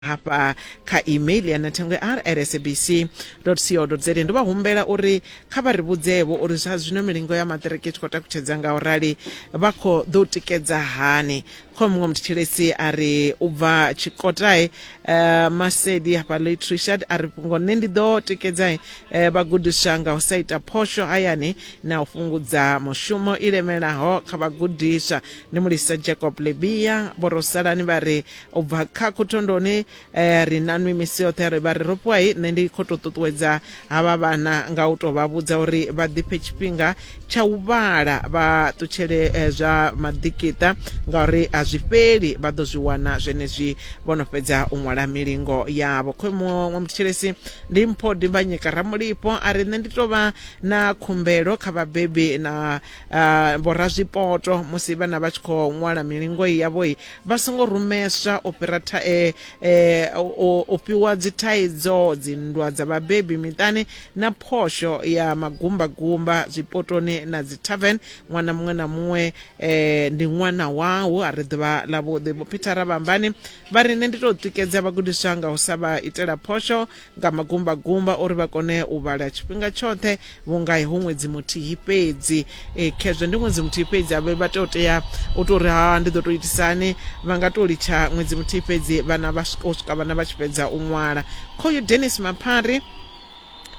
hafha kha email ya nathengwe r at sabc co za ndo vha humbela uri kha vha ri vhudzevho uri zwa zwino milingo ya maṱiriki i tshi khou takutshedza nga u rali vha khou ḓo tikedza hani kho muṅwe muthetshelesi a ri u bva tshikotae uh, masedi hafha late richard a ri fhungo nṋe ndi ḓo tikedza uh, vhagudiswa nga u sa ita phosho hayani na u fhungudza mushumo i lemelaho kha vhagudiswa ndi mulisa jacob lebia vhorosalani vha ri u bva kha khuthondoni eh, ri na nwi misi yoṱhe ri vha ri ro puwai nṋe ndi khou tou ṱuṱuwedza havha vhana nga u tou vha vhudza uri vha ḓiphe tshifhinga tsha u vhala vha ṱutshele eh, zwa maḓikiṱa ngauri a zwi fheli vha ḓo zwi wana zwenezwi vho no fhedza u ṅwala milingo yavho khoe muṅwe muthetshelesi ndi mpho dimbanyika ramulipo a ri nṋe ndi tou vha na khumbelo kha vhabebi na ah, vhorazwipoto musi vhana vha tshi khou ṅwala milingo yavhoi vha songo rumeswa u fhira tha, e, e, o, o fhiwa dzithaidzo dzinndwa dza vhabebi miṱani na phosho ya magumbagumba zwipotoni na dzitavern ṅwana muṅwe na muṅwe e, ndi ṅwana wau a ri ḓuvha ḽavhuḓi vho phithara vhambani vha ri nṋe ndi tou tikedza vhagudiswa nga u sa vha itela phosho nga magumbagumba uri vha kone u vhala tshifhinga tshoṱhe vhunga hu ṅwedzi muthihi fhedzi e, khezwo ndi ṅwedzi muthihi fhedzi a vha tea u tea u tou ri ha ndi ḓo tou itisani vha nga tou litsha ṅwedzi muthihi fhedzi vhana vha u swika vhana vha tshi fhedza u ṅwala khoyu denis maphari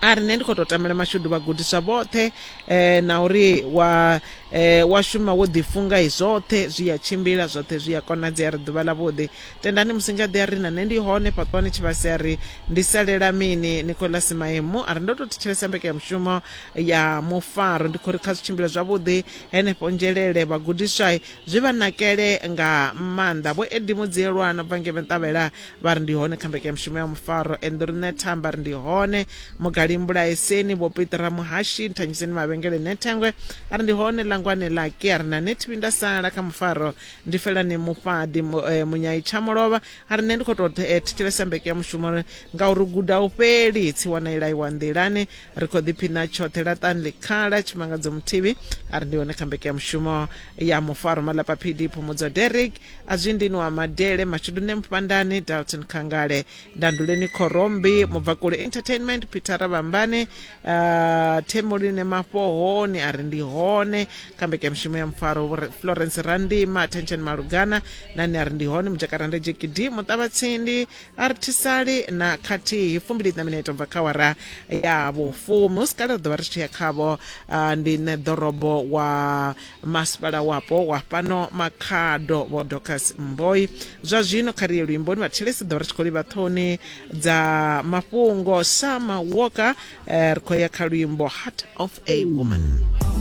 a ri nṋe ndi khou tou tamela mashudu vhagudiswa vhoṱhe um na uri wa um wa shuma wo ḓifunga i zwoṱhe zwi ya tshimbila zwoṱhe zwi ya konadzea ri ḓuvha ḽavhuḓi Tendani Musingaḓi a ri, Na nṋe ndi hone fhaṱwani Tshivhase a ri, Ndi salela mini? Nicholas Maemu a ri, Ndo tou thetshelesa mbekanyamushumo ya mufaro ndi khou ri kha zwi tshimbile zwavhuḓi henefho Nzhelele. Vhagudiswa zwi vha nakele nga maanḓa. Vho Eddie Mudzielwa no bva ngei Ventavhela vha ri, Ndi hone kha mbekanyamushumo ya mufaro. Enḓuri Nethamba a ri, Ndi hone. Mugali Mbulaeseni, Vho Peter Muhashi, Nthanyiseni Mavhengele Nethengwe a ri, Ndi hone. Langwani Lucky a ri, Na nṋe thi vhuyi nda sala kha mufaro ndi felani mufhaḓi mu- eh, munyai tsha mulovha a ri nṋe ndi khou tou eh, thetshelesa mbeke ya mushumo ri- ngauri u guda u fheli tsiwa na ilaiwa nḓilani ri khou ḓiphina tshoṱhe laṱani ḽikhala tshimangadzo muthivhi a ri ndi hone kha mbeke ya mushumo ya mufaro malapa phidi phumudzo derek a zwi ndini wa madele mashudune mufhandani dalton khangale Danduleni Khorombi, Mubvakule Entertainment, Peter Ravhambane, uh, Themuline Mafhoho, ni a ri ndi hone kha mbekanyamushumo ya mufaro Vho Re- Florence Randima, Attention Malugana na ni a ri ndi hone Mujakaranda Jekidi, Muṱavhatsindi, Artisali na khathihi fumbili na mineto bva kha wara ya vhufumi. Hu si kale ri ḓo vha ri tshi ya khavho uh, ndi nṋe ḓorobo wa Masipala wapo wa fhano Makhado Vho Docas Mboi zwa zwino kha riye luimboni vhathelesi ḓo ri tshi khou livha ṱhoni dza mafhungo Sama Walker eh, ri khou ya kha luimbo Heart of a Woman.